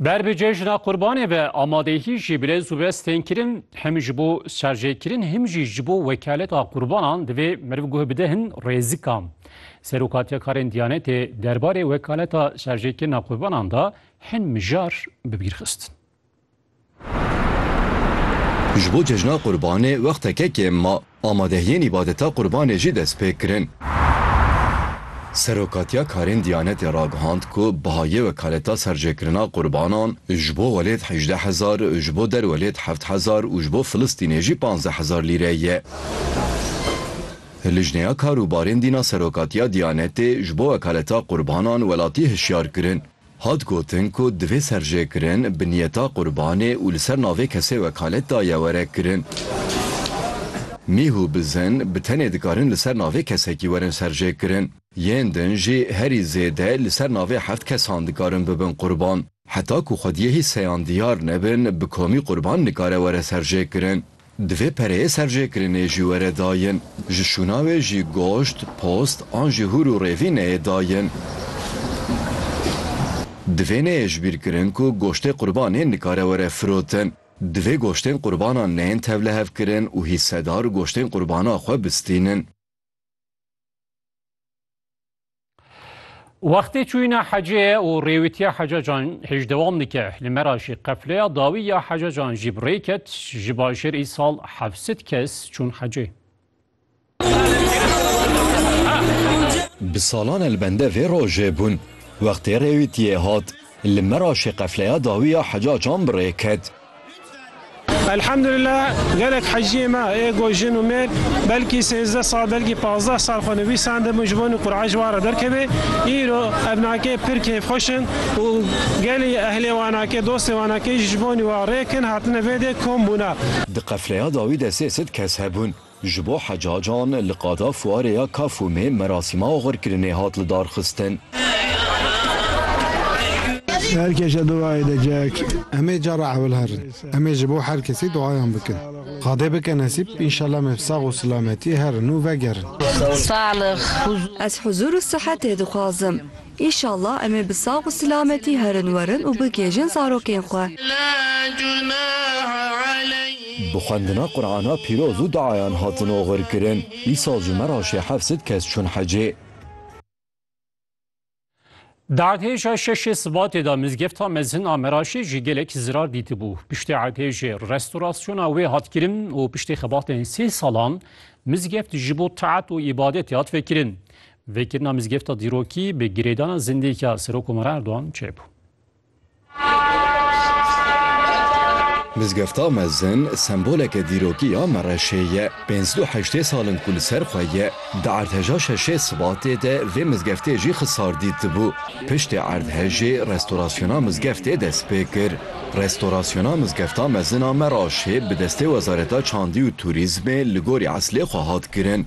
Ber bi cejna qurbanê ve amadehî jî bi lez û bez tên kirin hem ji bo şerjêkirin hem jî ji bo wekaleta qurbanan divê meriv guh bide hin rêzikan. Serokatiya karên Diyanetê derbarê wekaleta şerjêkirina qurbanan da hin mijar bi bîr xistin. Ji bo cejna Qurbanê wexteke kêm ma, amadehiyên îbadeta Qurbanê jî dest pê kirin. Serokatiya Karên Diyanetê ragihand ku biha yê wekaleta serjêkirina Qurbanan ji bo welêt hejdeh hezar, ji bo derwelêt heft hezar û ji bo Filistînê jî panzdeh hezar lîre ye. Lijneya Kar û Barên Dîn a Serokatiya Diyanetê ji bo wekaleta Qurbanan welatî hişyar kirin, Hat gotin ku divê serjêkirin bi niyeta qurbanê û li ser navê kesê wekalet daye were kirin. Mîh û bizin bi tenê dikarin li ser navê kesekî werin serjêkirin. Yên din jî herî zêde li ser navê heft kesan dikarin bibin qurban. Heta ku xwediyê hî seyan diyar nebin bi komî qurban nikare were serjêkirin. Divê pereyê serjêkirinê jî were dayin. Ji şûna wê jî goşt, post an jî hûr û rêvî neyê dayin. Divê neyê ji bîr kirin ku goştê qurbanê nikare were firotin. Divê goştên qurbanan neyên tevlihevkirin û hîssedar goştên qurbana xwe bistînin. Wextê çûyîna hecê ye û rêwîtiya hecacan hêj dewam dike. Li me ra jî qefleya dawî ya hecacan jî bi rê ket. Ji bajêr îsal heft sed kes çûn hecê. Bi salan e li bende vê rojê bûn. Wextê rêwîtiyê hat, li me ra jî qefleya dawî ya hecacan bi rê ket. Elhamdulillah gelek heciyê me ê ku jin û mêr belkî sêzdeh sal belkî pazdeh sal xwe nivîsandibûn ji bo ku Qur'an ji wan re derkeve. Îro ev nake pir kêfxweş in û gelê ehlê wan nake dostê wan nake jî ji bo wa rêk in hatine vê dê kom bûne. Di qefleya dawî de sê sed kes hebûn. Ji bo hecacan li qada fuarê ya Kafûmê merasîma oxirkirinê hat lidarxistin. Her kes a duayê dike. Em ê cara ewil herin. Em ê ji bo her kesî duayan bikin. Xwedê bike nesîb, înşellah me bi sax û silametî herin û vegerin. Ez huzur û sihetê dixwazim. Înşallah em ê bi sax û silametî herin werin û bigihêjin zarokên xwe. Bi xwendina Qur'ana pîroz û duayan hatin oxirkirin. Îsal ji me re şê hefsed kes çûn hecê. Di erdhêja şeşê Sibatê de mizgefta mezin a Meraşê jî gelek zirar dîtibû. Piştî erdhêjê restorasyona wê hat kirin û piştî xebatên sê salan mizgeft ji bo taat û îbadetê hat vekirin. Vekirina mizgefta dîrokî bi girêdana zindiyeke Serokkomara Erdogan çêbû. Mizgefta mezin semboleke dîrokî ya Mereşê ye. Pênc du heştê sal in ku li ser xwe ye. Di erdheja şeşê Sibatê de vê mizgeftê jî xisar dîtibû. Piştê erdhejê restorasyona mizgeftê dest pê kir. Restorasyona mizgefta mezin a Meraşê bi destê Wezareta Çandî û Turîzmê li gorî eslê xwe hat kirin.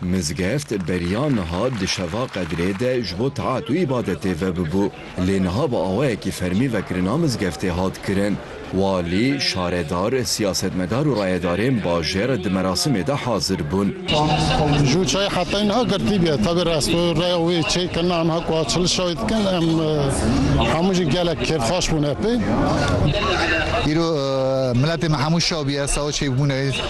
Mizgeft beriya niha di şeva qedrê de ji bo taat û îbadetê vebibû, lê niha bi awayekî fermî vekirina mizgeftê hat kirin. Walî, şaredar, siyasetmedar û rayedarên bajêr di merasimê de hazir bûn. Ji û çayê hetayî niha girtî bûye. Tevî resto reya wê çêy kirina em ha ku a çil şayî dikin em hemû jî gelek kêfxweş bûne pê. Îro miletê me hemû şaw bûye, sawa çêy bûne.